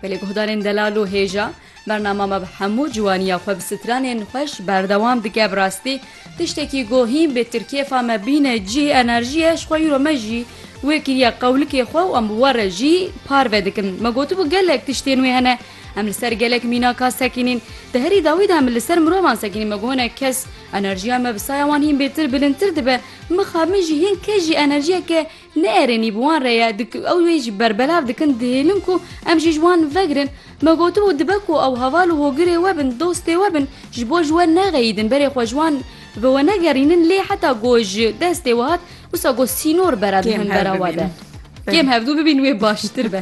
Belê guhdarên delal û hêja, bernama me bi hemû ciwaniya xwe bi stranên xweş berdewam dike bi rastî tiştekî ku hîn bê tir kêfa me bîne cî enerjiye ji xwe îro me jî wê kiriye qewlikê xwe û em bi we re jî parve dikin me gotibû gelek tiştên wê hene em li ser gelek mînaka sekînîn di herî dawî de em li ser mirovan sekînîn me got hinek kes enerjiya me bi saya wan hîn bêtir bilindtir dibe mixabin jî hîn kes jî enerjiyeke Ne erênî bi wan re ye, ew wê jî berbelav dikin, dihêlin ku em jî ji wan vegirin. Me gotibû dibe ku ew heval û hogirê we bin, dostê we bin, ji bo ji we nexeyîdin, berê xwe ji wan bi we negerînin lê heta ku ji destê we hat wisa ku sînor bera dihin bera we de. Kêm hevdû bibîn wê baştir be.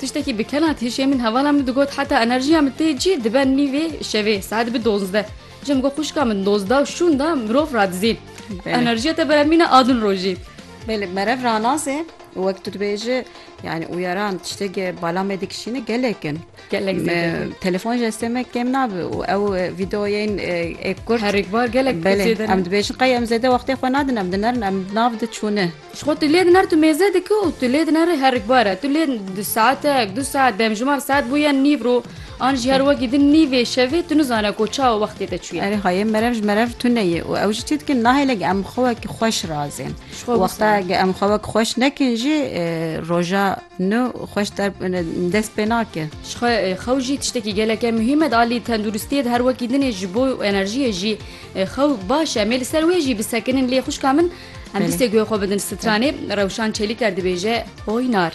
Tiştekî bi kena têşê min hevala min digot heta enerjiya min tê cî dibe nîvê şevê saet dibe dozdeh. Ji min got xwişka min dozda û şûn da mirov radizî. Enerjiya te beremîne a din rojî. Belê merev ranazê û wek tu dibêji yani uyaran tiştekî bala me dikişîne gelek in. Gelek zêde. Telefon ji destê me kêm nabe û ew vîdeoyên ê kurt herikbar gelek zêde. Em dibêjin qey em zêde wextê xwe nadin em dinerin em nav diçûne. Ji xwe tu lê diner tu mêze dike û tu lê diner ê herikbar e. Tu lê di saetek, du saet demjimar saet bûye nîv ro an jî her wekî din nîvê şevê tu nizane ku çawa wextê te çûye. Erê hayê merev ji merev tune ye û ew jî çi dikin nahêle ge em xwe wek xweş razên. Wexta ge em xwe wek xweş nekin jî roja nû xweş der dest pê nake. Ji xwe xew jî tiştekî geleke muhîm e di alî tenduristiyê de her wekî dinê ji bo enerjiyê jî xew baş e. Em ê li ser wê jî bisekinin lê xwişka min Em distê guhê xwe bidin stranê, Rewşan Çelîker dibêje Hoynar.